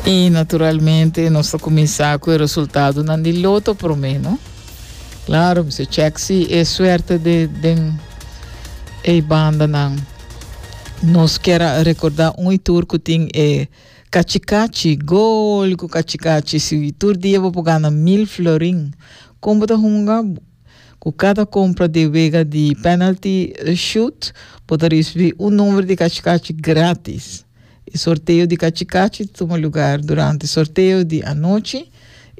I naturalmente nos ta kuminsá ku e resultadonan di loto promé, no? Klaro, mi se chek si e suerte de den e bandanan. Nos kier a rekordá un i tur ku tin e kachikachi, gol ku kachikachi. Si tur dia bo por gana mil florin, kon bo ta hunga? Ku kada kompra di wega di penalty shoot bo ta risibí un number di kachikachi grátis. E sorteo di kachikachi ta tuma lugar durante sorteo di anochi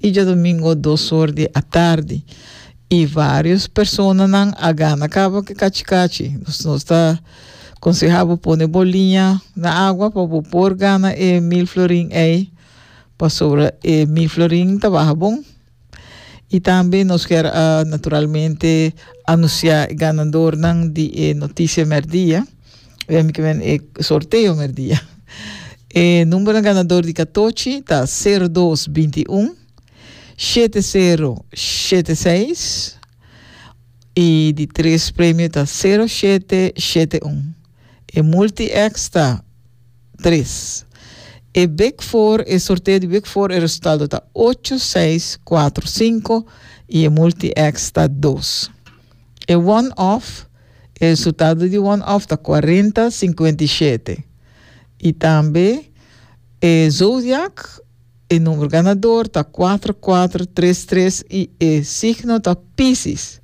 i djadomingo dos or di atardi i vários personanan a gana kaba ku e kachikachi. Dus nos ta konsehá bo pone bo liña na agua pa bo por gana e mil florin ei pasobra e mil florin ta baha bon. Y tambe nos kier a naturalmente anuncia e ganadornan di e noticia merdia, wèm ki wèn e sorteo merdia. E numbernan ganador di katochi ta sero dos binti un, shete sero shete seis y di tres premio ta sero shete shete un. E multi-X ta tres. E Big Four, e sorteo di Big Four e resultado ta ocho, seis, cuatro, cinco y e multi-X ta dos. E One Off, e resultado di One Off ta cuarenta, cincuenta y siete y tambe e Zodiac, E number ganador ta cuatro cuatro tres tres y e signo ta Piscis.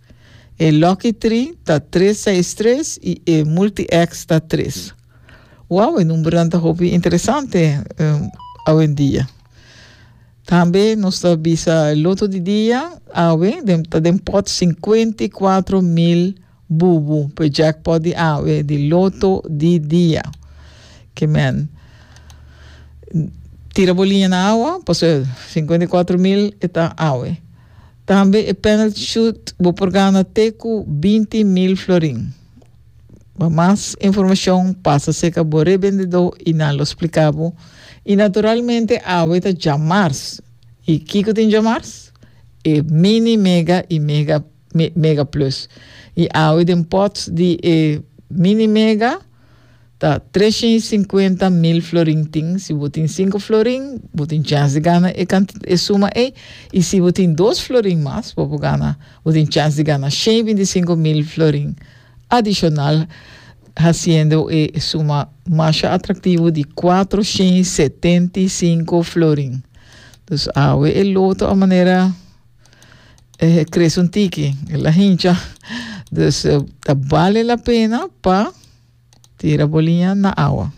E lucky three ta tres seis tres y e multi-X ta tres. Wow, e numbernan ta hopi interesante um, awendia. Tambe nos ta bisa loto di dia, awe, den, ta den pot 54 mil Bubu p'e jackpot di awe di loto di dia. Ke men tira bo liña na awa, pasobra sinkuenta i kuatro mil e ta awe. Tambe e penalty shoot bo por gana te ku binti mil florin. Pa mas informashon pasa serka bo rebendedó i nan lo spliká bo. I naturalmente awe ta djamars. I kiko tin djamars? E mini, mega i mega. mega plus. I awe den pots di e mini mega ta trescientos y cincuenta mil florin tin. Si bo tin cinco florin bo tin chance di gana e e suma ei. I si bo tin dos florin mas bo por gana bo tin chance di gana shen binticinco mil florin adicional haciendo e suma masha atractivo di cuatro shen setenty cinco florin. Dus awe e loto a manera. eh, crece un tiki, la hincha. Dus eh, ta bale la pena pa tira bolinha na awa.